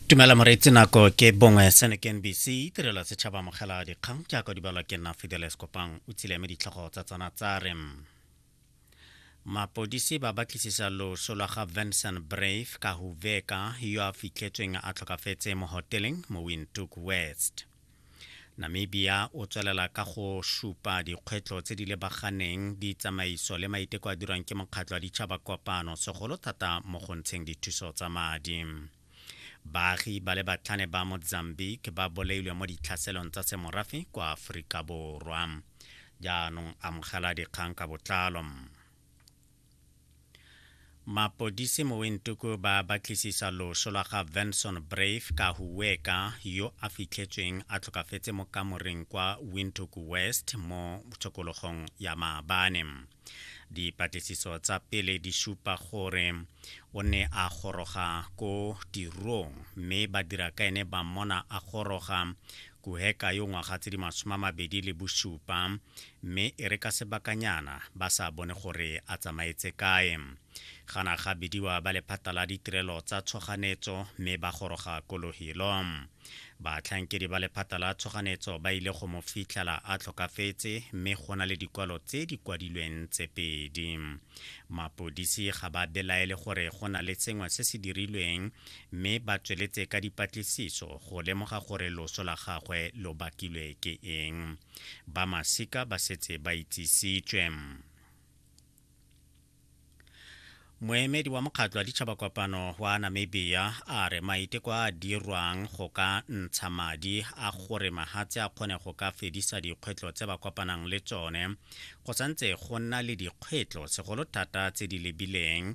tumela moreetsi nako ke bongwe senec nbc tirelo setšhaba mogela dikgang jaaka di balwa ke nna fideles kopang o tsileme ditlhogo tsa tsona tsa re mapodisi ba batlisisa loso lwa ga vincent brave ka huveka yo a fitlhetsweng a tlhokafetse mo hoteleng mo windhoek west Namibia o tswelela ka go supa dikgwetlho tse di lebaganeng, ditsamaiso le maiteko a dirwang ke Mokgatlho wa Ditšhaba Kopano, segolo thata mo go ntsheng dithuso tsa madi. Baagi ba le batlhane ba Mozambique ba bolailwe mo ditlhaselong tsa semorafe kwa Aforika Borwa. Jaanong amogela dikgang ka botlalo. mapodisi mo wentuku ba batlisisa loso lwa ga venson brave ka huweka yo a fitlhetsweng a tlhokafetse mo kamoreng kwa windhoek west mo tshokologong ya maabane dipatlisiso tsa pele di supa gore o ne a goroga ko tirong mme badira ka ene ba mmona a goroga Kuheka yo ngwaga tse di masome a mabedi le bosupa mme e re ka sebakanyana ba sa bone gore a tsamaetse kae. Gana ga bidiwa ba lephata la ditirelo tsa tshoganetso mme ba goroga ko Lohilo. Batlhankedi ba lephata la tshoganetso ba ile go mo fitlhela a tlhokafetse mme go na le dikwalo tse di kwadilweng tse pedi. Mapodisi ga ba belaele gore go na le sengwe se se dirilweng mme ba tsweletse ka dipatlisiso go lemoga gore loso la gagwe lo bakilwe ke eng. Ba masika ba setse ba itsisitswe. Moemedi wa mokgatlo wa ditšhabakopano wa Namibia a re maiteko a dirwang go ka ntsha madi a gore mahatse a kgone go ka fedisa dikgwetlho tse ba kopanang le tsone go santse go nna le dikgwetlho segolo thata tse di lebileng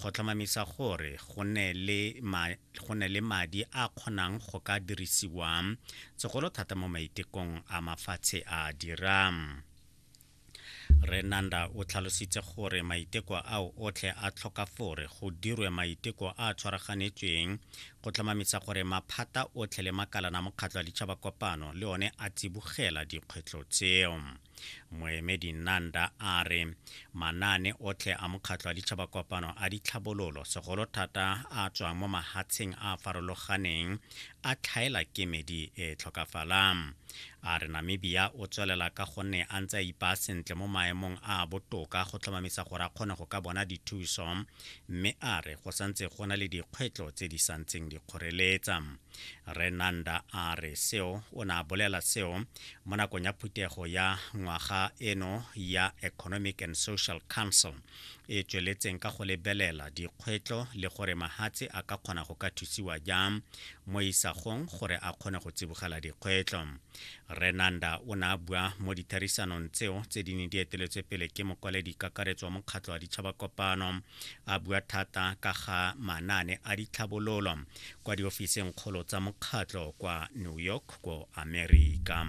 go tlhomamisa gore go ne le ma, go ne le madi a kgonang go ka dirisiwa segolo thata mo maitekong a mafatshe a dirang renanda o tlhalositse gore maiteko ao otlhe a tlhoka fore go dirwe maiteko a a tshwaraganetsweng go tlhomamisa gore maphata otlhe le makalana mokgatlho wa ditšhaba kopano le one a tsibogela dikgwetlho tseo Moemedi Nanda a re manaane otlhe a Mokgatlho wa Ditšhabakopano a ditlhabololo, segolo thata a tswang mo mahatsheng a a farologaneng, a tlhaela kemedi e e tlhokafalang. A re Namibia o tswelela ka gonne a ntse a ipaa sentle mo maemong a a botoka go tlhomamisa gore a kgone go ka bona dithuso, mme a re go santse go na le dikgwetlo tse di santseng di kgoreletsa. re nanda a re seo o ne a bolela seo mo nakong ya phuthego ya ngwaga eno ya economic and social council e tsweletseng ka go lebelela dikgwetlho le gore mahatshe a ka kgona go ka thusiwa jang mo isagong gore a kgone go tsibogela dikgwetlho renanda o ne a bua mo ditherisanong tseo tse di ne di eteletswe pele ke mokwaledi kakaretso wa mokgatlho wa ditšhaba kopano a bua thata ka ga manaane a ditlhabololo kwa diofiseng kgolo tsa mokgatlho kwa New York ko Amerika.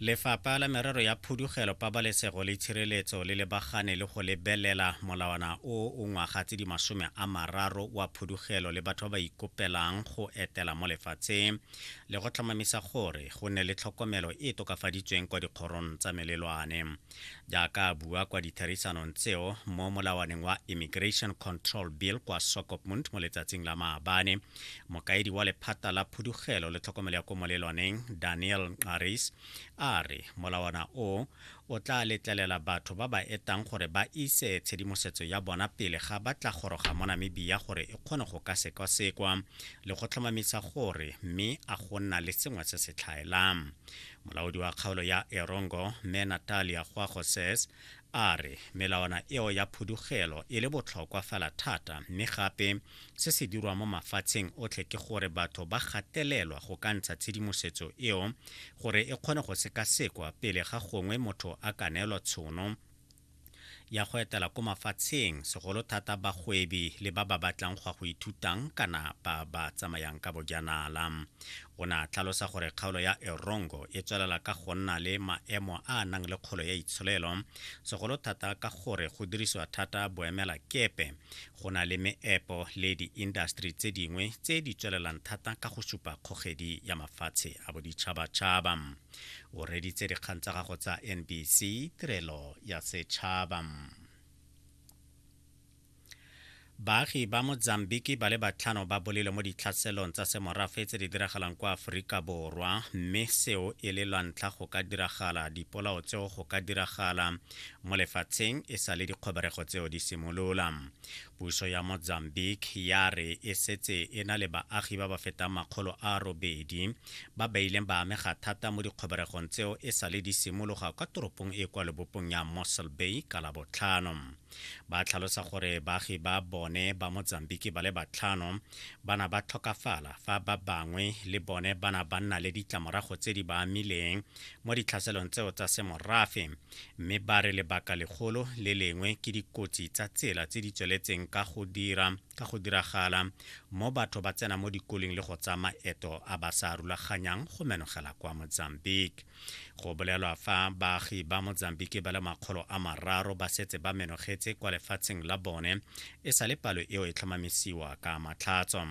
Lefapha la merero ya phudugelo pabalesego le tshireletso le lebagane le go lebelela molawana o o ngwaga tse di masome a mararo wa phudugelo le batho ba ba ikopelang go etela mo lefatsheng le go tlhomamisa gore go nne le tlhokomelo e e tokafaditsweng kwa dikgorong tsa melelwane jaaka a bua kwa ditherisanong tseo mo molawaneng wa immigration control bill kwa sokopmund mo letsatsing la maabane mokaedi wa lephata la phudugelo le tlhokomelo ya ko molelwaneng daniel nqaris a re molawana o o tla letlelela batho ba ba etang gore ba ise tshedimosetso ya bona pele ga ba tla goroga mo namibia gore e kgone go ka sekwasekwa le go tlhomamisa gore mme a go nna le sengwe se se tlhaelang molaodi wa kgaolo ya erongo mme natalia gwago says a re melawana eo ya phudugelo e le botlhokwa fela thata mme gape se se dirwa mo mafatsheng otlhe ke gore batho ba gatelelwa go ka ntsha tshedimosetso eo gore e kgone go sekasekwa pele ga gongwe motho a ka neelwa tshono ya go etela ko mafatsheng, segolo thata bagwebi le ba ba batlang go a go ithutang kana ba ba tsamayang ka bojanala. O ne a tlhalosa gore kgaolo ya Erongo e tswelela ka go nna le maemo a a nang le kgolo ya itsholelo, segolo thata ka gore go dirisiwa thata boemelakepe, go na le meepo le diindaseteri tse dingwe tse di tswelelang thata ka go supa kgogedi ya mafatshe a boditšhabatšhaba. o reditse dikgang tsa gago tsa nbc tirelo ya setšhaba baagi ba mozambiki ba le batlhano ba bolile mo ditlhaselong tsa semorafe tse di diragalang kwa aforika borwa mme seo e le lwantlha go ka diragala dipolao tseo go ka diragala mo lefatsheng e sa le dikgoberego tseo di simolola Puso ya Mozambique ya re e setse e na le baagi ba ba fetang makgolo a robedi ba ba ileng ba amega thata mo dikgoberegong tseo e sale di simologa kwa toropong e kwa lebopong ya Mossel Bay ka Labotlhano. Ba tlhalosa gore baagi ba bone ba Mozambique ba le batlhano ba na ba tlhokafala fa ba bangwe le bone ba na ba nna le ditlamorago tse di ba amileng mo ditlhaselong tseo tsa semorafe. mme ba re lebaka legolo le lengwe ke dikotsi tsa tsela tse di tsweletseng ka go dira ka go diragala mo batho ba tsena mo dikoleng le go tsa maeto a ba sa rulaganyang go menogela kwa mozambique go bolelwa fa baagi ba mozambique ba le makgolo a mararo ba setse ba menogetse kwa lefatsheng la bone e sa le palo eo e tlhomamisiwa ka matlhatso